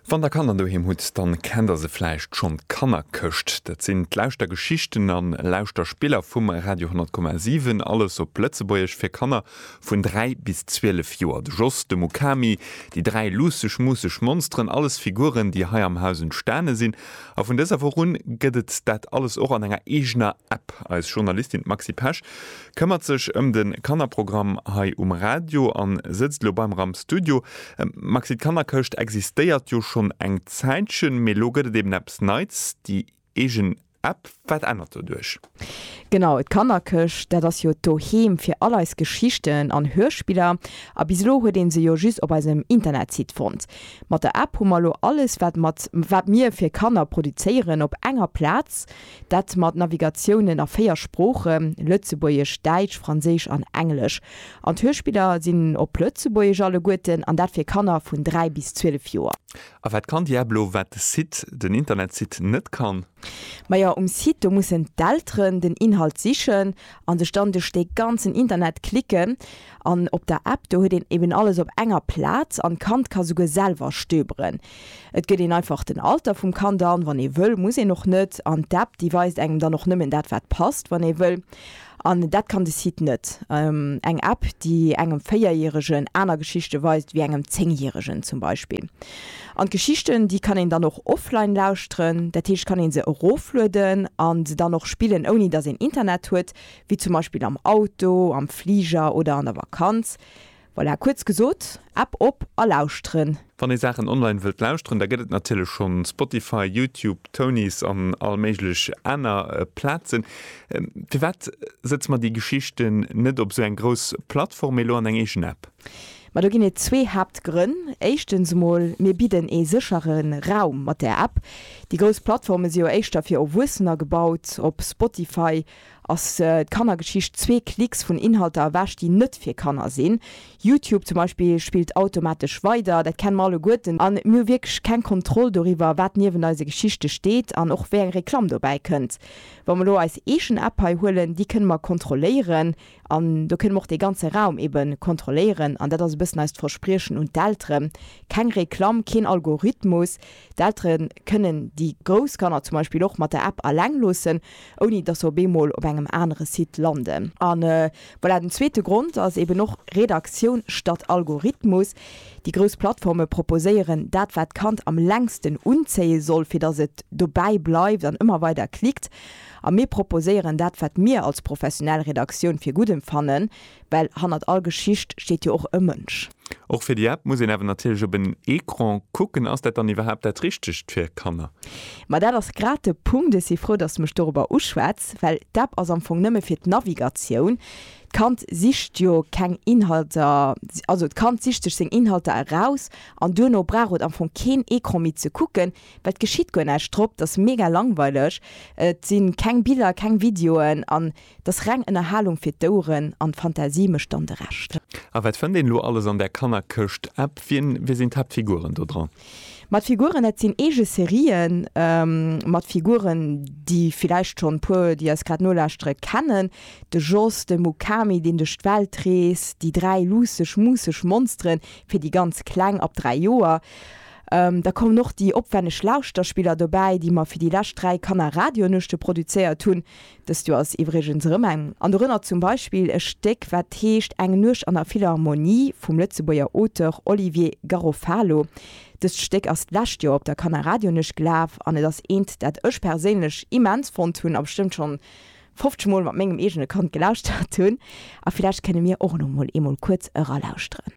Wann der Kanner doheem hutt, dann kennt der se vläicht schonn, d'Kannerkëscht. Dat sinn d'Lauschtergeschichten an Lauschterspiller vum Radio 10,7, alles op Lëtzebuergesch, fir Kanner vun 3 bis 12 Joer. De Jos, de Mukami, déi dräi luusseg-muusseg Monsteren, alles Figuren, déi hei am Haus entstane sinn. A vun dëser Woch un gëtt et dat alles och an enger eegener App. Eis Journalistin, d'Maxi Pesch, Këmmert sech ëm de Kannerprogramm hei um Radio an sëtzt lo beim ram Studio. Maxi, d'Kannerkëscht existéiert jo schonn eng Zäitchen, mee lo gëtt et eben eppes Neits, déi eegen App. Wat ännert doduerch? Genau, d'Kannerkëscht, dat ass jo d'Doheem fir all eis Geschichten an Hörspiller. A bis elo huet ee se jo just op eisem Internetsite fonnt. Mat der App hu mer lo alles, wat mir fir Kanner produzéieren, op enger Plaz. Dat mat Navigatiounen a 4 Sprooche, Lëtzebuergesch, Däitsch, Franséisch an Englesch. An d'Hörspiller sinn op Lëtzebuergesch alleguerten, an dat fir Kanner vun 3 bis 12 Joer. A wat kann Diablo wat de Site, den Internetsite, net kann? Majo, um Site do mussen d'Elteren den Inhalt sichen a sech dann duerch dee ganzen Internet klicken. An op der App do huet een eben alles op enger Plaz an d'Kand ka souguer selwer stöberen. Et gëtt een einfach den Alter vum Kand an, wann ee wëll, muss een och net. An d'App, déi weist engem dann och nëmmen dat, wat passt, wann ee wëll. An dat kann de Site net. Eng App, déi engem Véierjäregen aner Geschichte weist wéi engem Zéngjäregen zum Beispill. An d'Geschichten, déi kann een dann och offline lauschteren. Dat heescht, kann ee se eroflueden a se dann och spillen, ouni datt een Internet huet, wéi zum Beispill am Auto, am Fliger oder an der Vakanz. Voilà, kuerz gesot, App op a lauschteren! Wann ee Saachen online wëllt lauschteren, da gëtt et natierlech schonn Spotify, YouTube, Tonies an all méiglech aner Plazen. Firwat sëtze mer déi Geschichten net op esou eng grouss Plattform, mee elo an eng eegen App? Ma do ginn et zwee Haaptgrënn. Éischtens emol, mir bidden ee séchere Raum mat där App. Déi grouss Plattforme si jo éischter fir Erwuessener gebaut, op Spotify Ass d'Kannergeschicht zwee Klicks vun Inhalter ewech, déi net fir Kanner sinn? Youtube zum Beispill spillt automatesch weider. Dat kenne mer alleguerten a mir hu wierklech keng Kontroll doriwwer, wat niewent eise Geschichte steet an och wéi eng Reklamm dobäi kënnt. Wa mer elo eis eegen App hei huelen, déi kënne mer kontrolléieren an do kënne mer och dee ganze Raum ebe kontrolléieren. An dat ass e bëssen eist Verspriechen un d'Eltere, keng Reklamm, keen Algorithmus. D'Eltere kënnen déi grouss Kanner zum Beispill och mat der App alleng loossen. ouni dass se op eemol op engem anere Site landen. A voilà, den zweete Grond ass eben och Redaktioun statt Algorithmus. Déi grouss Plattforme proposéieren dat, wat d'Kand am längsten unzéie soll, fir dass et dobäi bleift an ëmmer weider klickt. A mir proposéieren dat, wat mir als professionell Redaktioun fir gutt empfannen. Well hannert all Geschicht steet jo och e Mënsch. Och fir déi App muss een awer natierlech op en Ecran kucken. Ass dat dann iwwerhaapt dat Richtegt fir Kanner? Ma dat ass grad de Punkt. Ech si frou, dass de mech dorobber uschwätz, well d'App ass am Fong nëmme fir d'Navigatioun. D'Kand sicht jo keng Inhalter, also d'Kand sicht sech seng Inhalter eraus an duerno brauch et am Fong keen Ecran méi ze kucken, well et geschitt guer näischt drop. Dat ass mega langweileg. Et si keng Biller, keng Videoen an Dass reng Ënnerhalung fir d'Ouren an d'Fantasie mécht dann de Rescht. A wat fënnt een lo alles an där Kannerkëscht? App, Wien, wie sinn d'Haaptfiguren do dran? Ma d'Figuren, dat sinn eege Serien mat Figuren, déi villäicht schonn e puer, déi eis grad nolauschteren, kennen, de Jos, de Mukami, deen duerch d'Welt reest, déi dräi luusseg, muusseg Monsteren, fir déi ganz Kleng, ab dräi Joer. Da kommen och déi opwänneg Lauschterspiller dobäi, déi mer fir déi lescht dräi Kannerradionuechte produzéiert hunn, Dëst Joer ass iwwregens erëm eng, an dorënner zum Beispill e Stéck, wat heescht Eng Nuecht an der Philharmonie vum Lëtzebuerger Auteur Olivier Garofalo. Dëst Stéck ass d'lescht Joer op der Kannerradionuecht gelaf an et ass eent, dat ech perséinlech immens fonnt hunn a bestëmmt schonn 50 Mol mat mengem eegene Kand gelauschtert hunn. A villäicht kënne mir och elo mol eemol kuerz eralauschteren.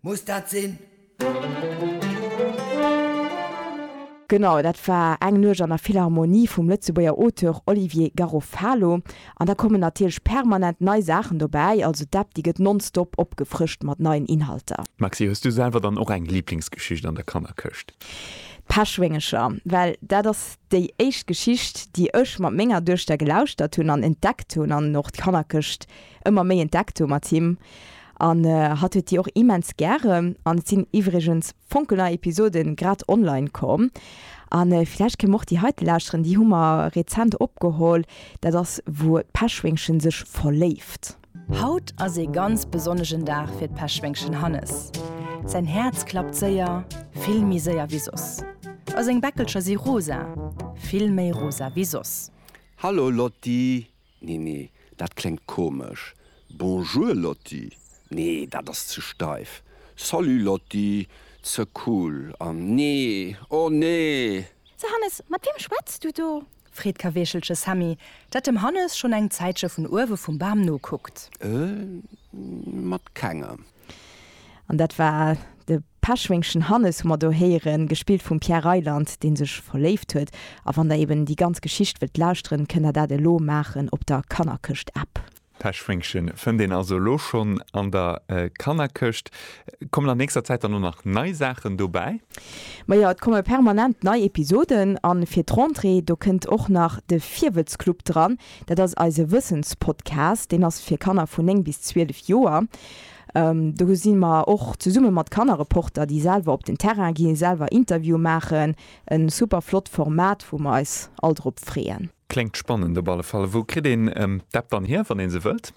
Muss dat sinn? Genau, dat war Eng Nuecht an der Philharmonie vum Lëtzebuerger Auteur Olivier Garofalo. An da kommen natierlech permanent nei Saachen dobäi, also d'App déi gëtt nonstop opgefrëscht mat neien Inhalter. Maxi, hues du selwer dann och eng Liblingsgeschicht an der Kannerkëscht? D'Peschwéngercher, well dat ass déi éischt Geschicht, déi ech mat menger Duechter gelauschtert hunn an entdeckt hunn an och d'Kannerkëscht ëmmer méi entdeckt hu mat him an hatt huet déi och immens gären an et sinn iwwregens fonkelnei Episoden grad online komm an villäicht kéim och déi heite lauschteren, déi hu mer rezent opgeholl, dat ass wou d'Peschwéngchen sech verléift. Haut ass ee ganz besonnegen Dag fir d'Peschwéngchen Hannes. Säin Häerz klappt séier, vill méi séier wéi soss a seng Bäckelcher si rosa, vill méi rosa wéi soss. Hallo Lotti! Nee, nee, dat kléngt komesch. Bonjour Lotti, Nee, dat ass ze steif. Salut Lotti, Ze cool. An nee, oh nee! So Hannes, mat weem schwätz du do? Freet Kaweechelche Sammy, dat dem Hannes schonn eng Zäitche vun uewe vum Bam nokuckt. Mat kengem. An dat war de. D'Peschwéngchen Hannes hu mer do héieren, gespillt vum Pierre Reyland, dee sech verléift huet. A wann der eben déi ganz Geschicht wëllt lauschteren, kënnt der dat elo maachen op der Kannerkëscht-App. D'Peschwéngchen fënnt een also elo schonn an der Kannerkëscht. Kommen an nächster Zäit dann och nach nei Saachen dobäi? Ma jo, et komme permanent nei Episoden. A fir d'Rentrée, do kënnt och nach de Virwëtzclub dran. Dat ass eise Wëssenspodcast. Deen ass fir Kanner vun 9 bis 12 Joer. Do si mer och zesumme mat Kannerreporter, déi selwer op den Terrain ginn, selwer Interviewe maachen. E super flott Format, wou mer eis all drop freeën. Kléngt spannend op alle Fall. Wou kritt een d'App dann hier, wann ee se wëllt?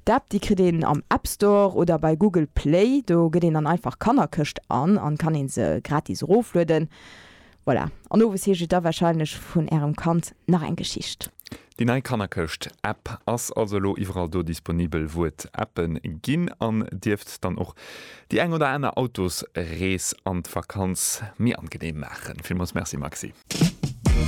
D'App, déi kritt een am App Store oder bei Google Play. Do gëtt een dann einfach Kannerkëscht an an kann ee se gratis eroflueden. Voilà, an owes heescht et da wahrscheinlech vun ärem Kand nach eng Geschicht. Déi nei Kannerkëscht App ass also elo iwwerall do disponibel wou et Appen ginn an dierft dann och déi eng oder aner Autosrees an d'Vakanz méi angeneem maachen. Villmools Merci Maxi.